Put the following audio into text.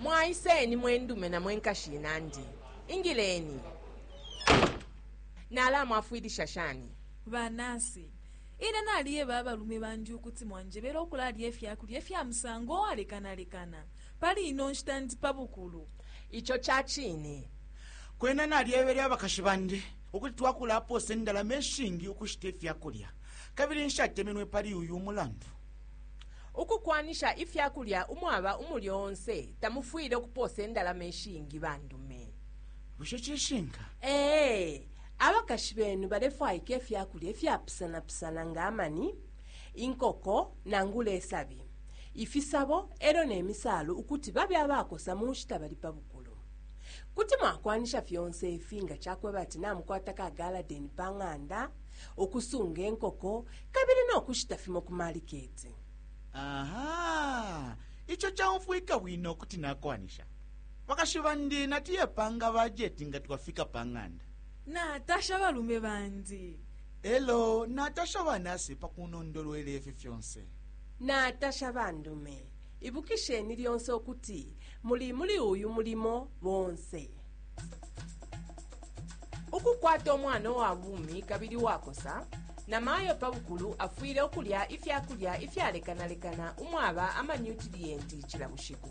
mwaiseni mwendume na mwenkashi inandi ingileni nalamwafwilisha shani banasi ine naliyeba abalume bandi ukuti mwanjebela ukulalya ifyakulya ifya musango owalekanalekana Pali ino nshita ndi pa bukulu. Ico ca cine. Kwena nalyebele abakashi bandi ukuti twakulapoosa indalama ishingi ukushita ifya kulya, kabili nshatemenwe pali uyu mulandu. Ukukwanisha ifya kulya umwaba umulyo onse tamufwile ukupoosa indalama ishingi, bandume. Bushe cishinka? Ee. Abakashi benu balefwaika ifya kulya ifyapusanapusana nga amani, inkoko, nangula isabi. ifisabo e lyo ne misaalu ukuti babe abakosa mu nshita bali pa bukulu. Kuti mwakwanisha fyonse ifi nga ca kweba ati namukwata ka galadeni pa ng'anda, ukusunga inkoko, kabili no kushita fimo ku maliketi. Aha! Ico caumfwika bwino kuti nakwanisha. Bakashi bandi natuyepanga bajeti nga twafika pa ng'anda. Natasha balume bandi. E lyo natasha banasi pa kunondolwela ifi fyonse. Natasha bandume. Ibukisheni lyonse ukuti muli muli uyu mulimo bonse. Ukukwata umwana uwa bumi kabili uwakosa, namayo pa bukulu afwile ukulya ifya kulya ifyalekanalekana umwaba amanyutiliyenti cila bushiku.